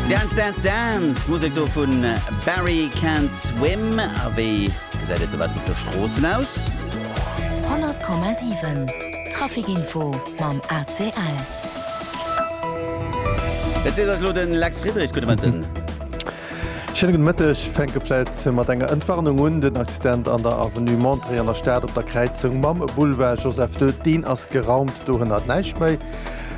Dance, dance, dance! Musek do vun Barry Can't Swim. A wéi gesäit et dowéinst op de Stroossen aus? 100,7 Trafikinfo mam ACL. Et seet eis elo de Lex Friedrich. Gudde Mëtten. Schéine gudde Mëtteg. Fänke vläit mat enger Entwarnung un. Den Accident an der Avenue Montrey an der Stad op der Kräizung mam Boulevard Joseph ii, deen ass geraumt. Do hënnert näischt méi.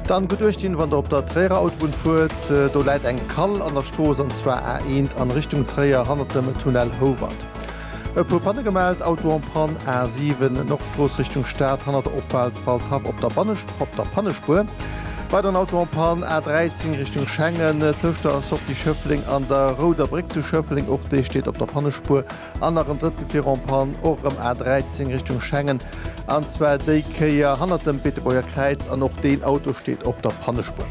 Dann gutt uecht dinn, wann der op der Tréierer Autobunn fuert. Do läit eng Kall an der Strooss, an zwar A1 an Richtung Tréier hannert dem Tunnel Howald. E puer Panne gemellt, Auto en panne, A7 Nordstrooss Richtung Stad hannert der Opfaart Waldhaff op der Pannespuer. Weideren Auto en panne, A13 Richtung Schengen tëscht der Sortie Schëffleng an der Rouder Bréck zu Schëffleng, och déi steet op der Pannespuer. An nach en drëtt Gefier en panne, och erëm A13 Richtung Schengen, an zwar déi Kéier hannert dem Beetebuerger Kräiz an och deen Auto steet op der Pannespuer.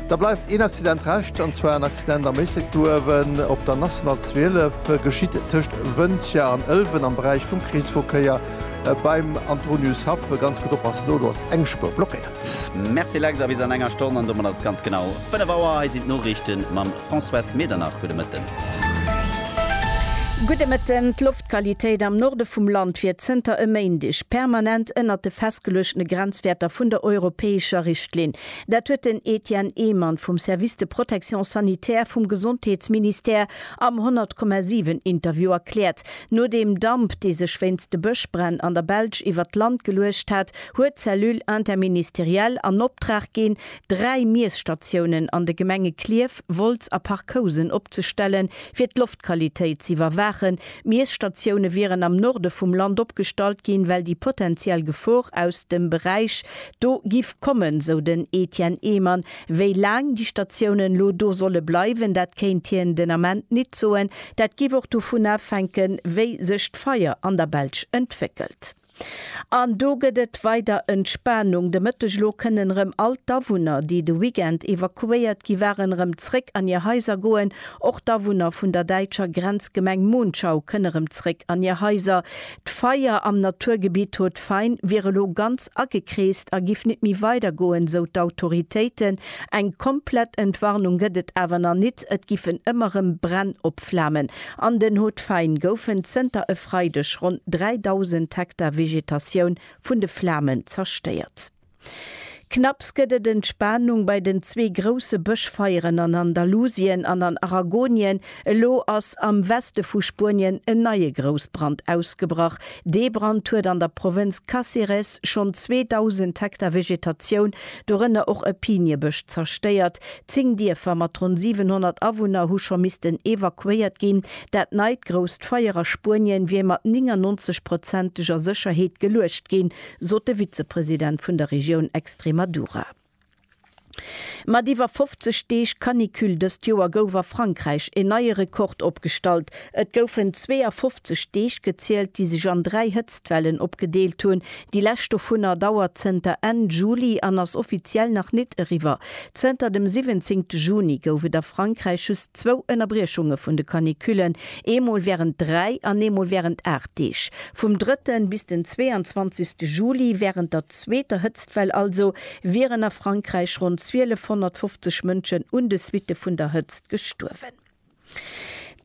Da bleift een Accident Rescht, an zwar en Accident am Méissektoruewen op der National 12. Geschitt tëscht Wëntger an Ëlwen am Beräich vum Kreesverkéier beim Antoniushaff. Ganz gutt oppassen do, do ass eng Spuer blockéiert. Merci Lex, a bis an enger Stonn, an domat ass et ganz genau 5 Auer. Hei sinn d'Noriichte mam Françoise Medernach. Gudde Mëtten. Gudde Mëtten. D'Loftqualitéit am Norde vum Land wier zënter e Méindeg permanent ënnert de festgeluechtene Grenzwäerter vun der europäescher Richtlinn. Dat huet den Etienne Ehmann vum Service de protection sanitaire vum Gesondheetsministère am 100,7 Interview erkläert. No deem Damp, dee sech wéinst de Bëschbränn an der Belsch iwwert d'Land geluecht hat, huet d'Cellule interministérielle an Optrag ginn, dräi Miesstatiounen an de Gemenge Klierf, Park Wolz a Park Housen opzestellen, fir d'Loftqualitéit z'iwwerwaachen. Miesstatioune wieren am Norde vum Land opgestallt ginn, well déi potenziell Gefor aus dem Beräich do giff kommen, sou den Etienne Ehmann. Wéi laang déi Statiounen elo do solle bleiwen, dat kéint hien den Ament nit soen. Dat giff och dovun afhänken, wéi sech d'Feier an der Belsch entwéckelt. An do gëtt et weider Entspanung de Mëtteg. Elo kënnen erëm all d'Awunner, déi de Weekend evakuéiert gi waren, erëm zréck an hir Haiser goen. Och d'Awunner vun der däitscher Grenzgemeng Monschau kënne erëm zréck an hir Haiser. D'Feier am Naturgebitt Haut-Fain wier elo ganz agekreest a giff nit méi weider goen, sou d'Autoritéiten. Eng komplett Entwarnung gëtt et awer nach nit. Et giffen ëmmer erëm Bränn opflamen. An den Hautes-Fagnes goufen zënter e Freideg ronn 3.000 Hektar Vegetatioun vun de Flamen zerstéiert. Knapps gëtt et Entspanung bei den zwee grousse Bëschfeieren an Andalusien an an Aragonien. Elo ass am Weste vu Spuenien en neie Groussbrand ausgebrach. Dee Brand huet an der Provënz Cáceres schonn 2.000 Hektar Vegetatioun, dorënner och e Piniebësch, zerstéiert. Zéng Dierfer mat ronn 700 Awunner hu scho missten evakuéiert ginn. Dat neit grousst Feier a Spuenien wier mat 99 prozenteger Sécherheet geluecht ginn, sot de Vizepresident vun der Regioun Extremadura. Mat iwwer 50 Deeg Canicule dëst Joer gouf a Frankräich een neie Rekord opgestallt. Et goufen 52 Deeg gezielt, déi sech an dräi Hëtztwellen opgedeelt hunn. Déi lescht dovunner dauert zënter Enn Juli an ass offiziell nach nit eriwwer. Zënter dem 17 Juni gouf et a Frankräich just zwou Ënnerbriechunge vun de Canicullen, eemol wärend dräi an eemol wärend aacht Deeg. Vum drëtten bis den 22. Juli, wärend der zweeter Hëtztwell also, wieren a Frankräich ronn 1250 Mënschen un de Suitte vun der Hëtzt gestuerwen.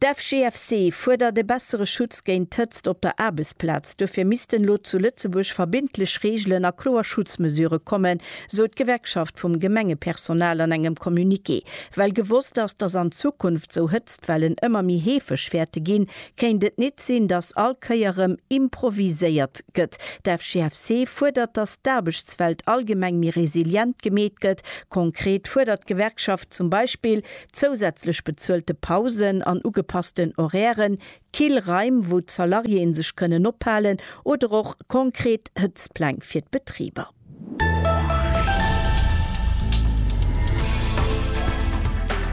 D'FGFC fuerdert e bessere Schutz géint d'Hëtzt op der Aarbechtsplaz. Duerfir missten elo zu Lëtzebuerg verbindlech Reegelen a kloer Schutzmesure kommen, sou d'Gewerkschaft vum Gemengepersonal an engem Communiqué. Well gewosst ass, datt an Zukunft sou Hëtztwellen ëmmer méi heefeg wäerte ginn, kéint et nit sinn, datt all Kéier rëm improviséiert gëtt. D'FGFC fuerdert, datt d'Aarbechtswelt allgemeng méi resilient gemeet gëtt. Konkret fuerdert d'Gewerkschaft zum Beispill Zousätzlech bezuelte Pausen an ugepassten Horairen, kill Raim, wou d'Salariéeë sech kënnen ophalen, oder och konkret Hëtztpläng fir d'Betriber.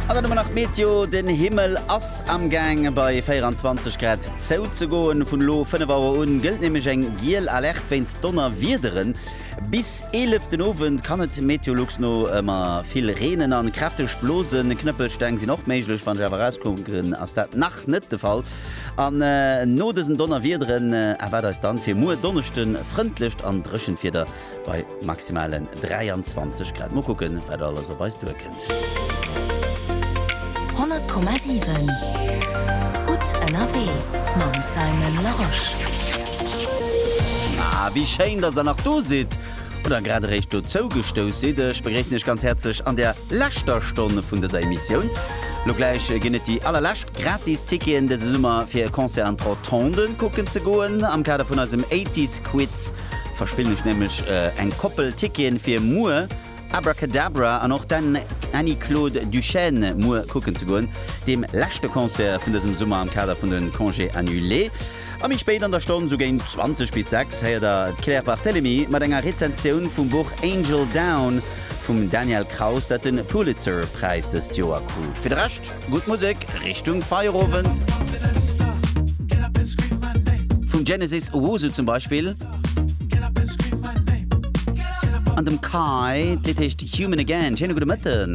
An dann hu mer nach d'Meteo, Den Himmel ass amgaang bei 24 Grad zouzegoen. Vun elo 5 Auer un gëllt nämlech eng giel Alerte wéinst Donnerwiederen. Bis 11 den Owend kann et Meteolux no ëmmer vill reenen an kräfteg blosen. Knëppelsteng sinn och méiglech. Wann ech awer erauskucken ass dat nach net de Fall. An no dësen Donnerwiederen erwaart eis dann fir muer Donneschden frëndlecht an dréchent Wieder bei maximalen 23 Grad. Mol kucken wat alles op eis duer kënnt. 100,7 Gutt ënnerwee mam Simon Larosche. Ah, wéi schéin, dass Der nach do sidd oder grad eréischt dozou gestouss sidd. Ech begréissen Iech ganz häerzlech an der leschter Stonn vun dëser Emissioun. Lo gläich ginn et déi allerlescht gratis Ticketen dëse Summer, fir e Concert an d'Rotonde kucken ze goen. Am Kader vun eisem Eighties Quiz verspillen ech nämlech eng Koppel Ticketen fir muer. Abracadabra an och den Annie Claude Duchesne muer kucken ze goen, deem leschte Concert vun dësem Summer am Kader vun de Congés annulés. A méi spéit an der Stonn, sou géint 20 bis 6, héiert der d'Claire Barthelemy mat enger Rezensioun vum Buch Angel Down vum Daniel Kraus, dat de Pulitzer Präis dëst Joer krut. Fir de Rescht gutt Musek Richtung Feierowend, vu Genesis Owusu zum Beispill. An dem Kai, d'Lidd heescht Human Again. Schéine gudde Mëtten.